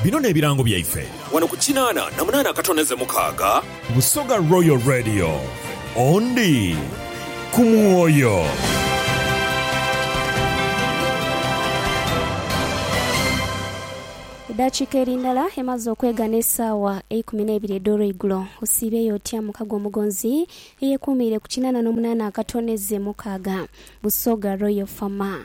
Bino n'ebirango byaife. Wano ku kinaana na munaana akatoneze mukaaga. Busoga Royal Radio, Ondi ku mwoyo. Edaakiika eri ndala emaze okwegha n'esaawa eikumi n'eibiri edh'olweigulo. Osiibeeyo otya muka gw'omugonzi eyekuumiire ku kinaana n'omunaana akatoneze mukaaga? Busoga Royal Fama.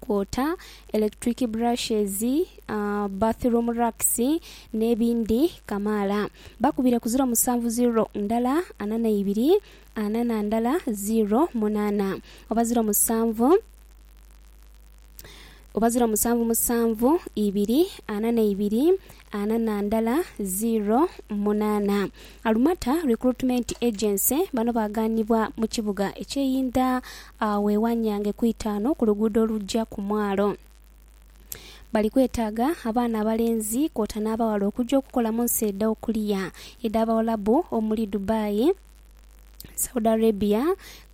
kwota electric brushes, bathroom racks n'ebindi kamaala. Bakubire ku ziro musanvu ziro ndala ana na ibiri ana na ndala ziro munaana oba ziro musanvu oba ziro musanvu musanvu ibiri ana na ibiri ana na ndala zeero munaana. Alumata Recruitment Agency bano baagaanibwa mu kibuga eky'e Inda agho e Wanyange ku Itaanu ku luguudo oluja ku mwalo. Bali kwetaaga abaana abalenzi kwota n'abaghala okuja okukola mu nsi edha okulia edh'Abawalabu omuli Dubai, Saudi Arabia,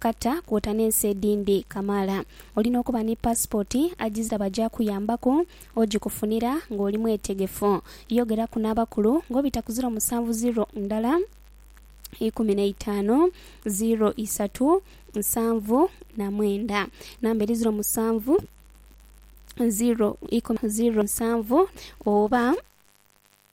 Qatar kwota n'ensi edhindi kamaala. Olina okuba ni paasipooti agizira bagyakuyambaku ogikufunira ng'oli mwetegefu. Yogeraku n'abakulu ng'obita ku ziro musanvu ziro ndala ikumi na itaanu ziro isatu nsanvu na mwenda. Namba eri ziro musanvu ziro ikumi ziro nsanvu oba.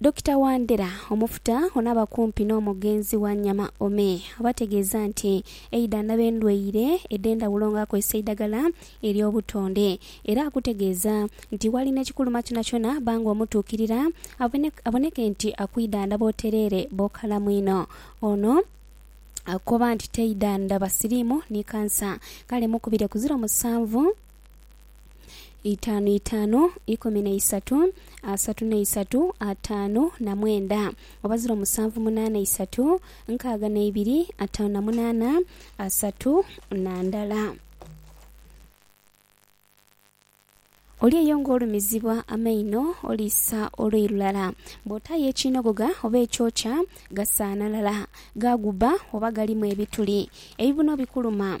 Dokita Wandera, Omufuta ono aba kumpi n'omugenzi Wanyama Ome oba ategeeza nti eidha ndaba endwaire edh'endhawulo nga akozesa eidhagala ery'obutonde era akutegeeza nti walina ekikuluma kyonakyona bba nga omutuukirira aboneke nti akwidhandhaba otereere bw'okalamu inho. Ono akoba nti taidha ndaba siriimu ni kansa kale mukubire ku ziro musanvu. Itaanu itaanu, ikumi na isatu, asatu na isatu, ataanu na mwenda. Oba ziro musanvu munaana isatu, nkaaga na ibiri, ataanu na munaana, asatu na ndala. Oli eyo ng'olumizibwa amaino, oliisa olwei lulala. Bw'otaayo ekiinogogha oba ekyokya, gasaanalala, ghaagubba oba galimu ebituli. Ebibuno bikuluma,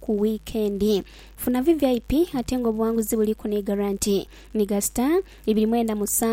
ku wiikendi. Funa VVIP ate ng'obuwanguzi buliku ni garanti. Megastar, ibiri mwenda musanvu.